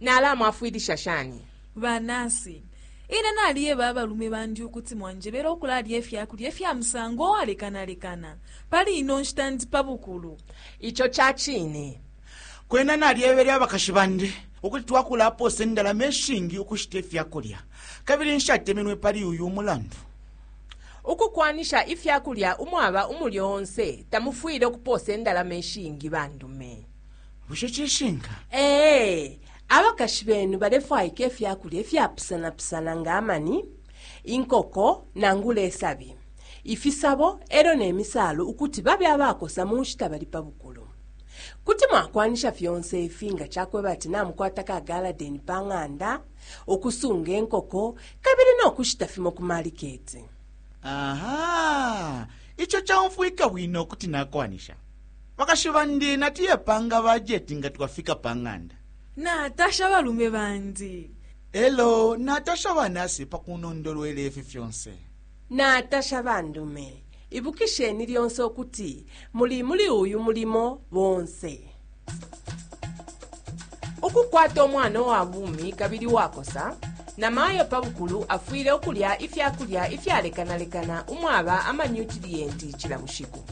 Nalamwafwilisha shani? Ba nasi, Ine naliyeba abalume bandi ukuti mwanjebele ukulalya ifya kulya ifya musango uwalekanalekana. Pali ino nshita ndi pa bukulu. Ico ca cine. Kwena nalyebele abakashi bandi ukuti twakulapoosa indalama ishingi ukushita ifya kulya, kabili nshatemenwe pali uyu umulandu. Ukukwanisha ifya kulya umwaba umulyo onse tamufwile ukupoosa indalama ishingi. Bandume. bushe cishinka ee abakashi benu balefwaika ifya kulya ifyapusanapusana nga amani inkoko nangula isabi ifisabo e lyo ne misaalu ukuti babe abakosa mu nshita bali pa bukulu kuti mwakwanisha fyonse ifi nga cakweba ati namukwata ka galadeni pa ng'anda ukusunga inkoko kabili no kushita fimo ku maliketi aha ico caumfwika bwino kuti nakwanisha Bakashi bandi natuye panga bajeti nga twafika pa ng'anda. Natasha abalume bandi. E lyo natasha ba nasi pa kunondolwela ifi fyonse. Natasha bandume. Ibukisheni lyonse ukuti muli muli uyu mulimo bonse. Ukukwata umwana uwa bumi kabili uwakosa, namayo pa bukulu afwile ukulya ifya kulya ifyalekanalekana umwaba amanyutiliyenti cila bushiku.